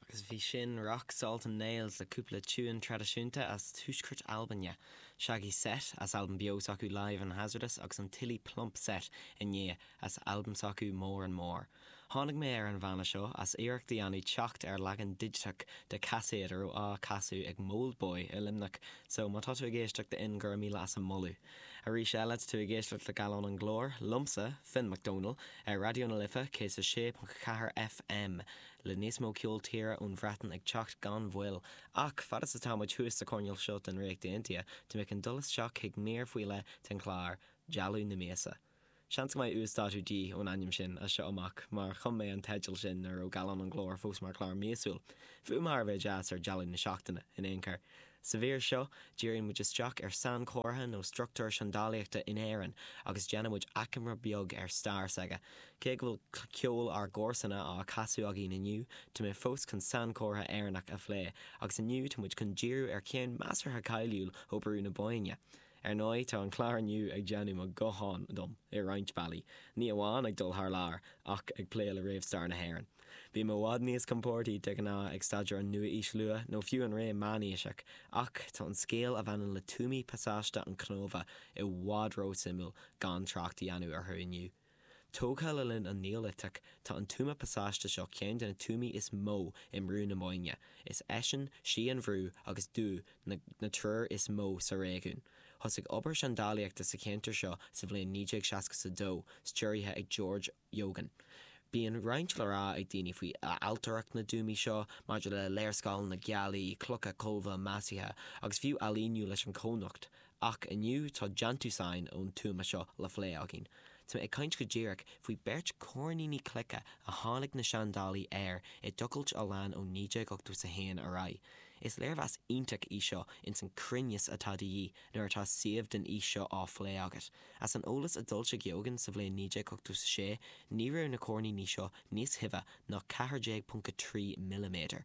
Agus bhí sin Rock Salt and Nails le cúpla tiúin traidisiúnta as Tuaisceart Albain, Shaggy Set as albam beo s'acu Live and Hazardous agus an Tilly Plump Set i ndiaidh as albam s'acu More and More. Tháinig mé ar an bhanna seo as iarracht a dhéanamh teacht ar leagan digiteach de caiséad a raibh á casadh ag m'oldboy i Luimneach so má tá tú ag éisteacht d'fhoinn go raibh míle as an moladh. Arís eile tá tú ag éisteacht le Gallán an Ghlóir, liomsa, Finn McDonald, ar Raidió na Life 106.4 FM, le níos mó ceol tíre ón Bhreatain ag teacht gan mhoill. Ach, fad is atá muid thuas sa choirnéal seo den Ríocht Aontaithe, tá mé chun dul isteach chuig mír faoi leith den chlár, Dealbh na Míosa. Seans go mbeidh uasdátú de dhíth ón ainm sin as seo amach, mar chum mé an teideal sin nuair a raibh Gallán an Ghlóir fós mar chlár míosúil. Fuaim thar a bheith deas ar Dealbh na Seachtaine, in aon chor. Sa mhír seo, díríonn muid isteach ar sainchomhartha nó struchtúr seandálaíochta in Éirinn agus déanann muid achoimre beag ar stair s'aige. Cé go bhfuil ceol ár gcomharsana á chasadh againn inniu, tá mé fós chun sainchomhartha Éireannach a phlé, agus inniu tá muid chun díriú ar cheann measartha cáiliúil ó Bhrú na Bóinne. Ar ndóigh, tá an clár inniu ag déanamh mo ghutháin dom i roinnt bealaí, ní amháin ag dul thar lear ach ag plé le réamhstair na hÉireann. Bím i bhfad níos compordaí de ghnáth ag staidéar an Nua-Aois Luath nó fiú an ré meánaoiseach, ach tá an scéal a bhaineann le tuamaí pasáiste an Chnóbha i bhfad ró-suimiúil gan trácht a dhéanamh orthu inniu. Tógtha le linn an Neoiliteach, tá an tuama pasáiste seo ceann de na tuamaí is mó i mBrú na Bóinne. Is eisean, Sí an Bhrú agus Dubhadh na triúr is mó sa réigiún. Thosaigh obair seandálaíochta sa cheantar seo sa bhliain 1962, stiúraithe ag George Eogan. Bíonn roinnt le rá ag daoine faoi ailtireacht na dtuamaí seo, maidir le léarscáileanna gealaí, clocha colbha maisithe, agus fiú ailíniú leis an cónocht, Ach inniu tá déantúsáin ón tuama seo le phlé againn. Tá mé ag caint go díreach faoi beirt coirníní cloice a tháinig na seandálaí air i dtochailt a lean ó 1981 ar aghaidh. Is léirmheas iontach í seo ins an cruinneas atá de dhíth nuair atá suíomh den aois seo á phlé agat. As an eolas a d'fhoilsigh Eogan sa bhliain 1986, ní raibh na coirníní seo níos tibhe ná 14.3 milliméadar.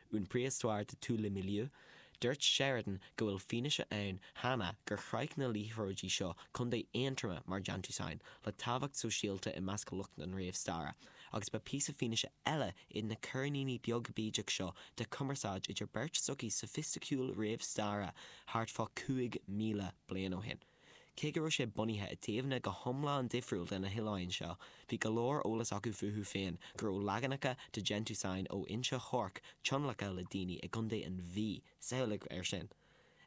'Une préhistoire de tous les milieux', dúirt Sheridan go bhfuil fianaise ann cheana gur shroich na liathróidí seo contae Aontroma mar déantúsáin le tábhacht sóisialta i measc lucht an réamhstaire, agus ba phíosa fianaise eile iad na coirníní beag bídeach seo de chumarsáid idir beirt sochaí soifisticiúil réamhstaire thart fá 5,000 bliain ó shin. Cé go raibh sé bunaithe i dtaobhanna go hiomlán difriúil de na hoileáin seo, bhí go leor eolas acu fúthu féin go raibh leaganacha de déantúsáin ó Inse Orc tionlactha le daoine i gContae an Mhí, samhlaigh air sin!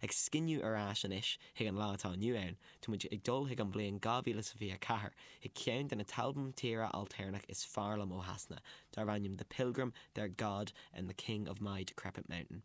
Ag scinneadh ar ais anois chuig an lá atá inniu ann, tá muid ag dul chuig an bhliain 2024 chuig ceann de na t-albam tíre ailtéarnach is fearr liom ó Shasana, darb ainm The Pilgrim, Their God and the King of My Decrepit Mountain.